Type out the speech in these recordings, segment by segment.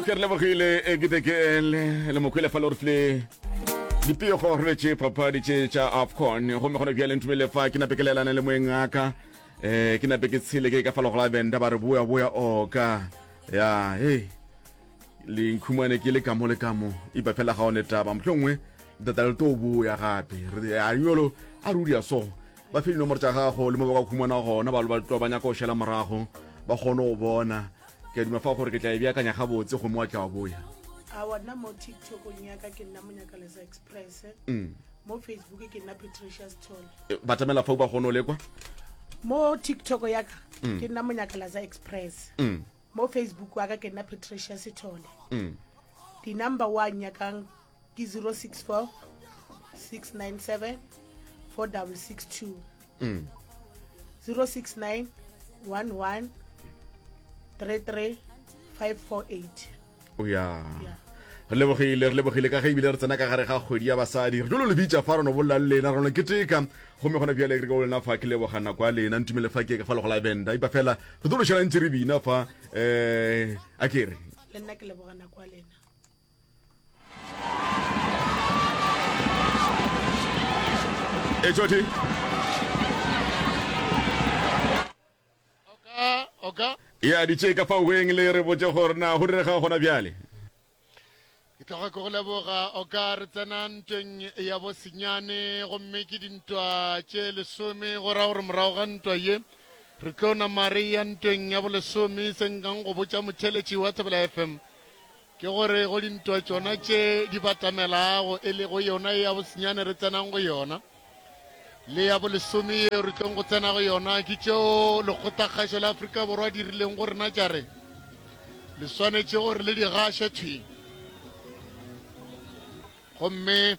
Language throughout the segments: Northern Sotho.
ke re lebogile e ke teke le le mokhwele fa lorfle dipego re tše papadi tše tša afcon gomme gona bjale ntumele fa ke nape ke laelana le moeng aka um ke nape ke tshele ke ka fa legola benda ba re boya boya oka ya hei lenkhumane ke le kamo le kamo ipa fela ga one taba motlho nngwe data le to boya gape a yolo a ruri ya so ba fe dinomoro tša gago le mo ba ka khumana gona ba ba nyaka go šela morago ba kgone go bona ke a duma fa gore ke tla e beakanya gabotse gomme wa tla wa boya awa nna mo tiktokong yaka ke nna monyakalesa express mm. mo facebook ke nna patricia stol eh, ba tamela fa ba kgone o lekwa mo tiktok yaka mm. ke nna monyakalasa express mm. mo facebook waka ke nna patricia sethole di-number one yakang ke 064 697 4662 mm. 069 11 33 548 o ya yeah. re lebogile re lebogile ka ge ebile re tsena ka gare ga kgwedi ya basadi re jolo lebitsa fa reno bolela le lena reno ke teka gomme gona bjale ke ka lena fa ke leboga nako ya lena ntumele fa ke ka fa legola benda ipa fela re tlo lošela ntse re bina fa um a kere le nna ke leboga nako ya lena e tšoti e aditše ka faweng le re botse gore na go direga gona bjale ke tloga ke go leboga o ka re tsena ntweng ya bosenyane gomme ke dintwa tše lesome go ra gore morago ga ntwa ye re tlo nama re ya ntweng ya bolesome se nkang go botša motheletši wa tsebela fm Ke gore go dintwa tšona tše di batamelago, e lego yona ye ya bosenyane re tsenang go yona, le ya bolesome yeo re tlong go tsena go yona, ke tšeo lekgotlakgašo la Afrika Borwa di rileng go rena tša re le swanetše gore le di gaše thwi. Gomme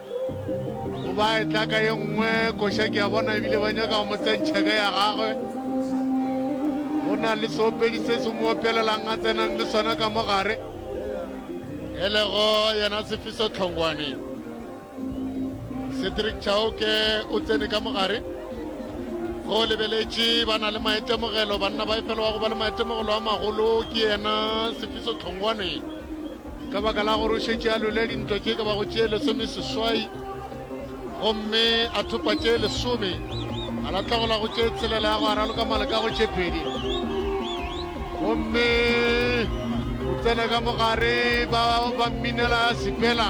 O ba e tla ka ye nngwe koša ke a bona ebile ba nyaka go mo tsentšha ka ya gagwe. Go na le seopedi se se mo opelelang a tsenang le sona ka mo gare. E lego yena Sefiso Tlhongwane. Cedric Chauke o tsene ka mo gare. Go lebeletše ba na le maitemogelo banna ba e fela wa go ba le maitemogelo a magolo ke yena Sefiso Tlhongwane. Ka baka la gore o šetše a lole dintwa tše ka bago tše lesomeseswai gomme a thopa tše lesome, a latlhegelwa go tše tshelela ya go a raloka maleka go tše pedi, gomme o tsena ka mogare ba ba mminela sepela.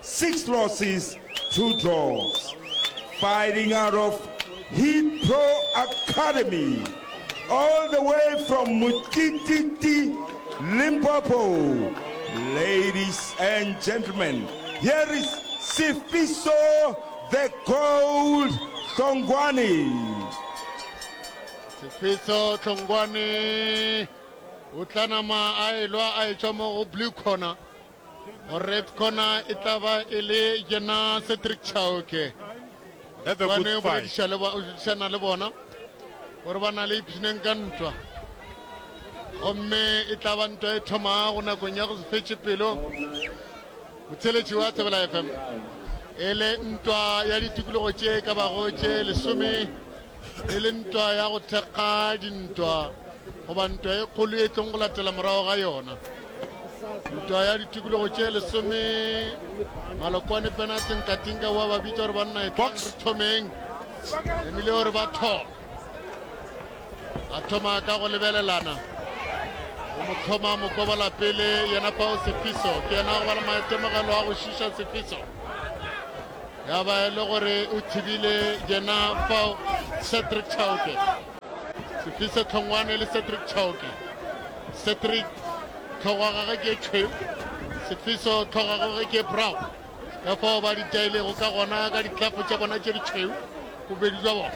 Six losses, two draws. Fighting out of Heat Pro Academy, all the way from Mutititi, Limpopo. Ladies and gentlemen, here is Sifiso the Gold Tlongwane. Sifiso Tlongwane o tla nama a elwa a etswa mo go blue corner. Go red corner e tla ba e le yena Cedric Chauke. That's a good fight. Shana le bona gore ba na le ipshineng ka ntwa gomme e tla ba ntwa e thomago nakong ya go se fetše pelo motsheletši wa tsebela fm e le ntwa ya ditokologo tše ka bago tše lesome e le ntwa ya go thekga dintwa goba ntwa e kgolo e tlong go latela morago ga yona ntwa ya ditikologo tše lesome malokwane pena tinkatinka wa ba bitsa gore banna e tlang re thomeng emile gore ba thoma a thoma ka go lebelelana o mo thoma mokobola pele yena pao sefiso ke yena go ba le maitemogelo a go šiša sefiso Ya ba e le gore o thibile yena fao Cedric Chauke. Sefise Tlhongwane le Cedric Chauke. Cedric tlhogo ya gage ke tšhwe, Sefiso tlhogo ya gage ke brown. Ka fao ba di jailego ka gona ka ditlafo tša bona tše ditšhweu bobedi jwa bona.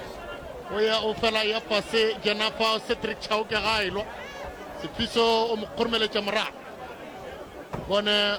O ya o fela ya fase yena fao Cedric Chauke ga a e lwa. Sefiso o mo kgoromeletša morago. Bone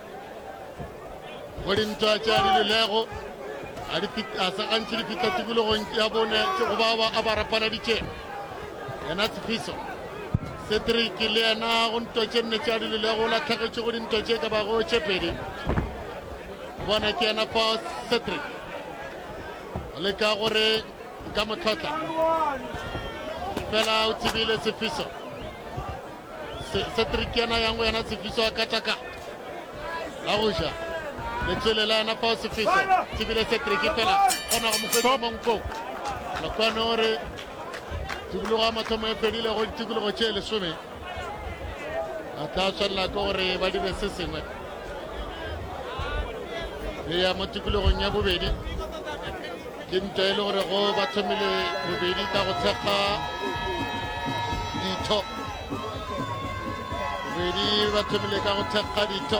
go dintwa tša di lelego a di fit- a sa gantši di fihla tikologong ya bone ke go ba ba a ba rapaladitše yena tshepiso cedric le yena go ntwa tše nne tša di lelego la tlhagetše go dintwa tše ka bago tše pedi O bona ke yena fa cedric o leka gore nka motlhotla fela o tsebile tshepiso Cedric yena yango yena Tsefiso a kataka la go ja letswele la yena fao Tsefiso tsebile Cedric fela kgona go mofetsa mo nkong Lokwano o re tikologo ya mathomo e fedile go ditikologo tše lesome a tla tshwanela ke gore ba dire se sengwe le ya mo tikologong ya bobedi Ke ntwa e le gore go ba thomile bobedi ka go thekga ditho. Bobedi ba thomile ka go thekga ditho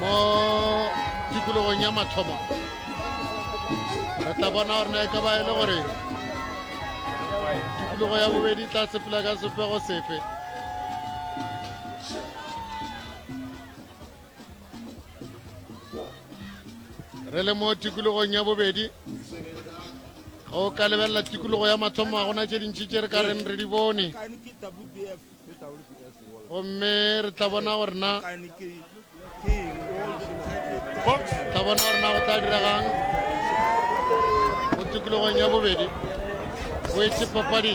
mo tikologong ya mathomo. Re tla bona gore na e ka ba e le gore tikologo ya bobedi tla sepela ka sefego sefe. re le mo tikologong ya bobedi o ka lebelela tikologo ya mathomo ga gona tše dintši tše re ka reng re di bone gomme re tla bona gore na tla bona gore na go tla diregang mo tikologong ya bobedi o etse papadi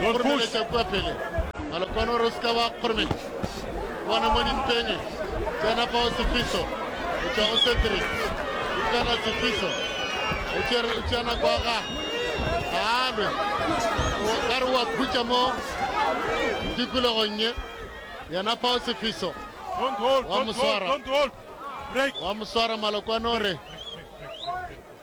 Go kgoromeletša kua pele. Malokwane o re o se ka wa kgoromeletša. Bona mo dimpeng. Tsena fa o sefiso. O tšwa o sentri. O kana sefiso. O tšere o tšea nako ya gago. Ga a lwe. O ka re wa khutša mo tikologong ye. Yena fa o sefiso. Wa mo swara. Wa mo swara Malokwane o re.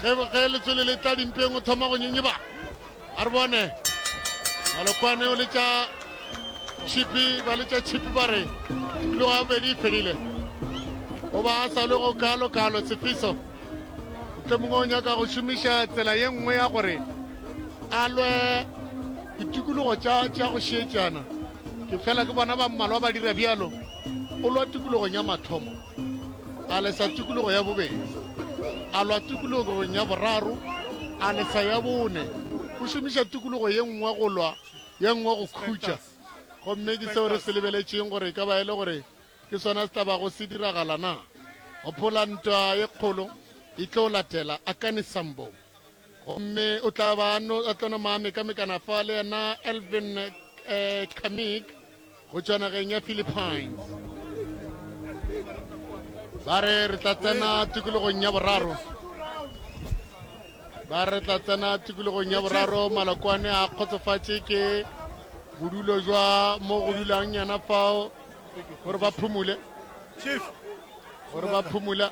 ge ge letswele le tla dimpeng o thoma go nyenyeba a re bone malokwane o letša chipi ba letša chipi ba re ebile wa bedi e fedile o ba a sa le go kalo kalo tshepiso tle mongwe o nyaka go šomiša tsela ye nngwe ya gore a lwe ditikologo tša tša go šietšana ke fela ke bona ba mmalwa ba dira bjalo o lwa tikologong ya mathomo a lesa tikologo ya bobedi a lwa tikologong ya boraro a lesa ya bone go šomiša tikologo ye nngwe go lwa ye nngwe go khutša gomme ke seo re se lebeletšeng gore e ka ba e le gore ke sona se tlabago se diragala na gopola ntwa ye kgolo e tlo latela akane sambong Gomme o tla ba a no, a tlo nama a mekamekana fa le yena Elvin eh, Kamik go tšwa nageng ya Philippines. Ba re re tla tsena tikologong ya boraro. Ba re tla tsena tikologong ya boraro malokwane a kgotsofatše ke bodulo jwa mo go dulang yana fao gore ba phumule gore ba phumula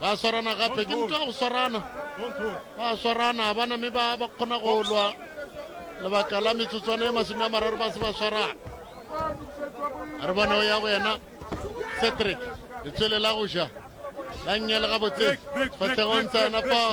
Ba swarana gape, ke ntwa go swarana. Ba swarana, ga bana mme ba ba kgona go lwa lebaka la metsotswana e masome a mararo ba se ba swarana. A re bona o ya go yena Cedric, letswele la go ja la nnyele gabotse, fatlhego ntse yena fao.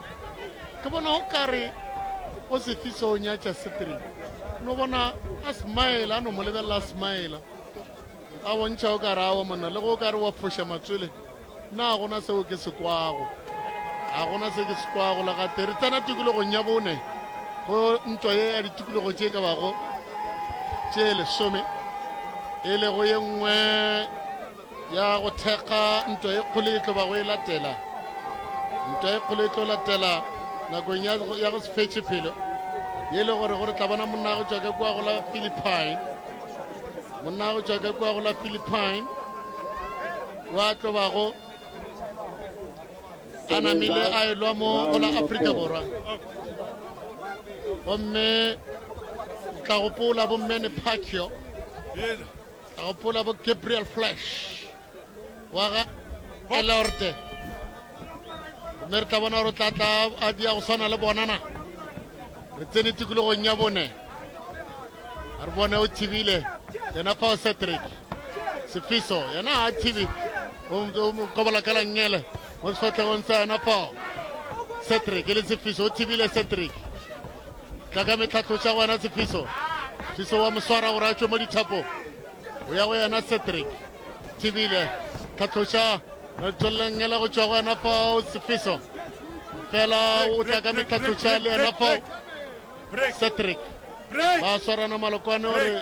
Ke bona o kare o se fisa o nyatša setere no bona a smile a no mo lebelela a smile a bontšha o kare awa monna le go o kare wa foša matswele na gona seo ke se kwago ga gona se ke se kwago le gate re tsena tikologong ya bone go ntwa ye ya ditikologo tše ka bago tše lesome e lego ye nngwe Ya go thekga ntwa e kgolo e tlo bago e latela. Ntwa e kgolo e tlo latela nakong ya go, ya go se fetše pelo. Ye le gore gore tla bona monna go tšwa ka kua go la Philippine. Monna go tšwa ka kua go la Philippine. Wa tlo bago a namile a e lwa mo go la Afrika Borwa. Gomme tla gopola bommene Pacquiao. Ka gopola bo Gabriel Flash wa ga Elorte. Mme re tla bona gore o tla tla a dia go swana le bonana. Re tsene tikologong ya bone. A re bone o thibile. Yena fa o Cedric. Sefiso yena ha thibi. O o mo kobola ka langele. Mo sefatlhegong sa yena fao. Cedric e le Sefiso o thibile Cedric. tla ka metlhatlo tša gona tshepiso tshiso wa moswara gore a tšwe mo dithapo o ya go yena cedric thibile tlhatloša tswelelengela go tšwa go yena fao tshepiso fela o tla ka metlhatloša le yena fao cedric ba swarana malokwane gore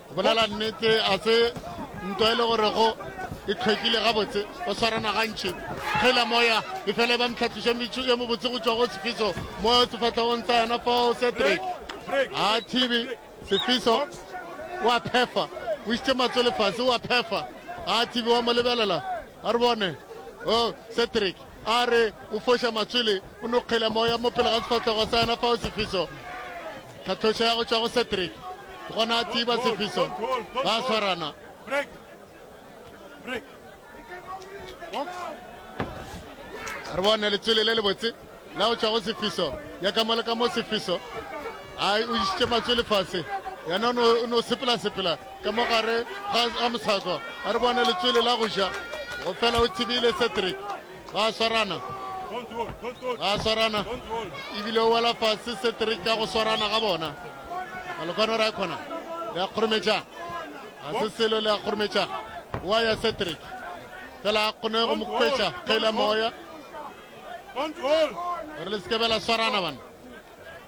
Go bolela nnete, a se nto e le gore go e tlhwekile gabotse go swarana gantši kgela moya e fela e ba mtlhatliše metšho e mobotse go tšwa go sefiso mo sefatlhegong tsa yona fao cedric a thibi sefiso wa phefa o itse matso lefase wa phefa a thibi wa mo lebelela a re bone o oh, cedric a re o foša matswele o no kgela moya mo pele ga sefatlhogo sa yena fao sefiso tlhatlhoša ya go tšwa go cedric gona a tiba sefiso ba swarana re bone letswele le lebotse la go tšwa go sefiso ya ka mo le ka mo sefiso a o išitše matswele fase yena o no sepela-sepela ka mo gare ga ga moshako a re bone letswele la go ja go fela o tsebile cedric ba swarana ba swarana ebile o wela fase cedric ka go swarana ga bona malokwane o re a kgona le a kgorometša ga se selo le a kgorometša wa ya cedric fela a kgone go mo kwetša kgela moya gore le sekebela swarana bana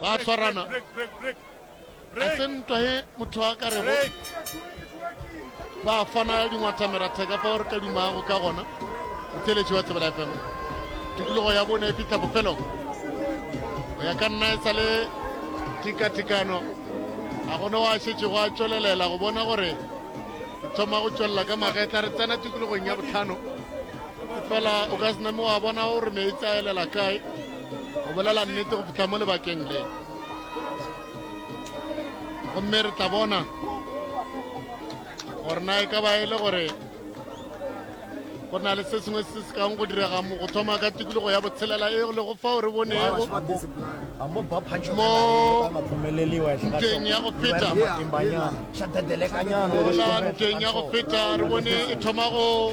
ba tshwarana a se ntwa he motho a ka rego ba fana dingwatameratheka ka fa gore ka dumago ka gona motheletši wa tsebela fm tikologo ya bone e fitlha bofelong go ya ka nna e sa le tikatikano a gone wa šetše go a tšwelelela go bona gore thoma go tšwelela ka magetla re tsena tikologong ya botlhano fela o ka se name wa bona gore meetse a elela kae go bolela nnete go fihla mo lebakeng le gomme re tla bona gore na e ka ba e le gore go na le se sengwe se se kang go direga mo go thoma ka tikologo ya botshelela e le go fao re bonego mo nteng ya go feta nteng ya go feta re bone e thoma go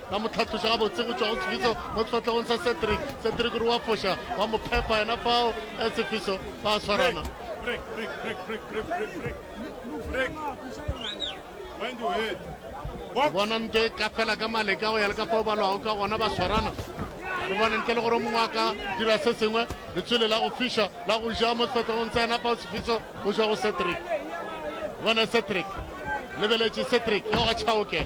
la mo tlhatloša gabotse go tšwa go sefiso mo sefahlegong sa cedric cedric gore wa foša wa mo phepa yena fao e sefiso ba swarana bona nto e ka fela ka maleka go ya le ka fao ba lwago ka gona ba swarana re bone ntle le gore mongwe a ka dira se sengwe letswele la go fiša la go ja mo sefahlegong tsa yena fao sefiso go tšwa go cedric bona cedric lebeletše cedric yo ga chaoke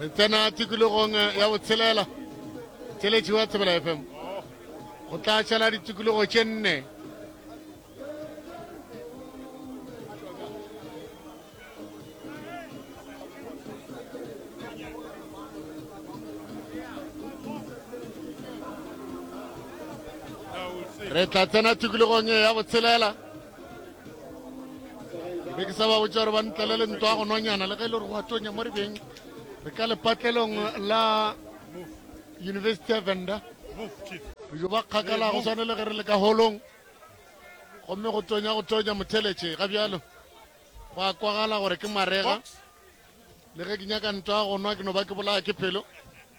re tsena tikologong ya botshelela tšeletši wa tsebela fm go tla tšhala ditikologo tše nne re tla tsena tikologong e ya botshelela be ke sa ba botsa gore ba ntlele le ntwa go nonyana le ge e le gore go atonya mo rebeng re ka lepatlelong la university ya venda re jo ba kgakala go tshwane le ge re le ka holong gomme go tonya go tonya motheletše ga bjalo go a kwagala gore ke marega le ge ke nyaka ntwa go nwa ke no ba ke bolaya ke pelo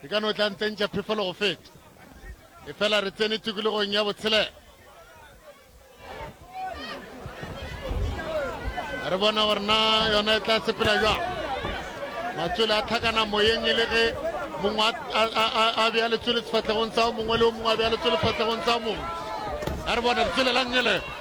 e ka no tla ntsentša phefolo go feta e fela re tsene tikologong ya botshelela re bona gore na yona e tla sepela jwang matswele a tlhakana moyeng e le ge mongwe a bea letswele sefatlhegong tsa mongwe le o mongwe a bea letswele sefatlhegong tsa mongwe a re bona letswele la ngele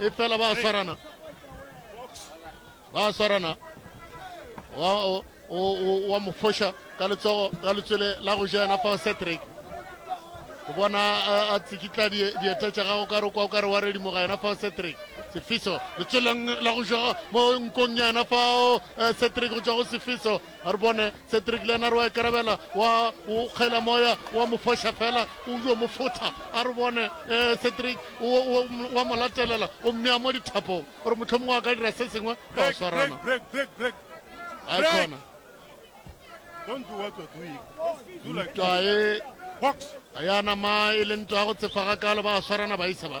e fela ba swarana ba swarana wa mo foša ka letsogo ka letswele la go ja yena fa cedric o bona a tsikitla dieta tša gago ka re kwa o ka re wa redimoga yena fa cedric sefiso letsweleng la go ja mo nkong ya yena fao eh, cedric go tswa go sefiso a re bone cedric lenar wa ikarabela wa o kgela moya wa mo foša fela o yo mo fotha a re bone um cedric wa mo latelela o mmea mo dithapong gore motlho mongwe a ka dira se sengwe ka o swarana a yana ma e leng twa go tsefaga kale ba swarana ba isa ba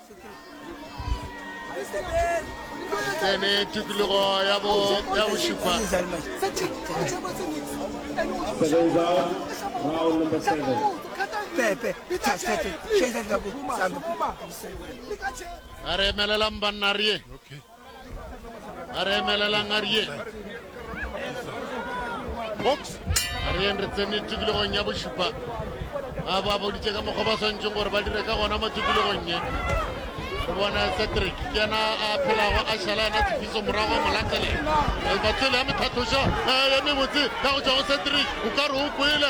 tsene tikologo ya bo ya bošupa a re emelelang banna re ye a re emelelang a rieng box a rieng re tsene tikologong ya bošupa ba ba boditse ka mokgwa ba tshwanetseng gore ba dire ka gona mo tikologong ye re bona cedric ke yena a phelago a šala yena tshepiso morago a molatlele batsele ya methatloša ya mebotse ka go tswa go cedric o ka re o kwele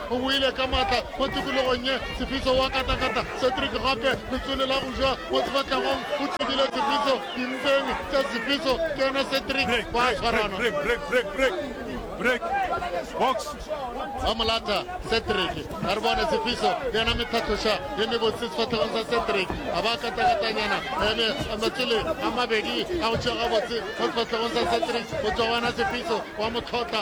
O boile ka matla mo tikologong ye. Tshepiso wa katakata Cedric gape letswele la go ja mo sefatlhegong o tsebile Tshepiso dimpeng tša Tshepiso ke yena Cedric ba a tshwarana. Ba mo lata Cedric ga re bone Tshepiso le yena methahloša ye mebotse sefatlhegong sa Cedric a ba katakatanyana ebe matswele a mabedi a go tšea gabotse mo sefatlhegong sa Cedric go tswa go yena Tshepiso wa mo tlhotla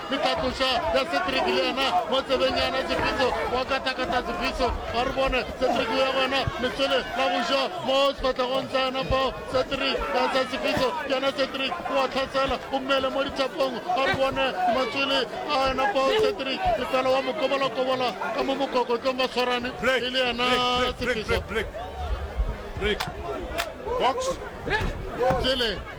le kakoša ya Cedric le yena mo tsebeng ya na Tshepiso wa katakata Tshepiso ga re bone Cedric ya gona lesole la go ja mo sefatlhegong sa yena fao Cedric ya sa Tshepiso ke yena Cedric wa tlhasela o mmele mo ditshapong ga re bone matswele a yena fao Cedric lefela wa mokobalakobola ka mo mokokotlong ba tshwarane e le yena Tshepiso Box. Jele.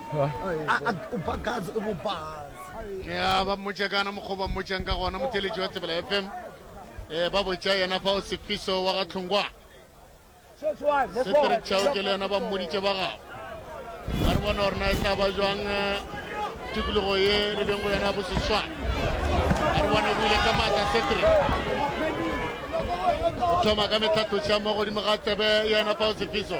ya ba mmotša kana mokgwa ba mmotšang ka gona motheletši wa tsebela fm um ba botša yena fa o sefiso wa ga tlhongwa setere tšhao ke le yena ba mmoditše ba gago ga re bona gore na e tla ba jwang tikologo ye re beng go yona ya boseswana ga re bona buile ka maatla setere o thoma ka metlhatloša mo godimo ga tsebe yena fa o sefiso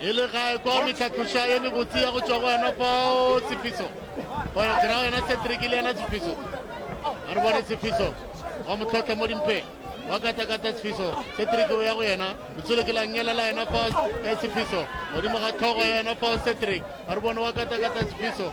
E le gae kwa metlhatloša ye mebotse ya go tšwa go yena fao Tshepiso. Gore tsena go yena Cedric le yena Tshepiso. A re bone Tshepiso. Wa motlhotlha mo dimpeng. Wa katakata Tshepiso. Cedric o ya go yena. Letsole ke la ngela la yena fao Tshepiso. Godimo ga tlhogo ya yena fao Cedric. A re bone wa katakata Tshepiso.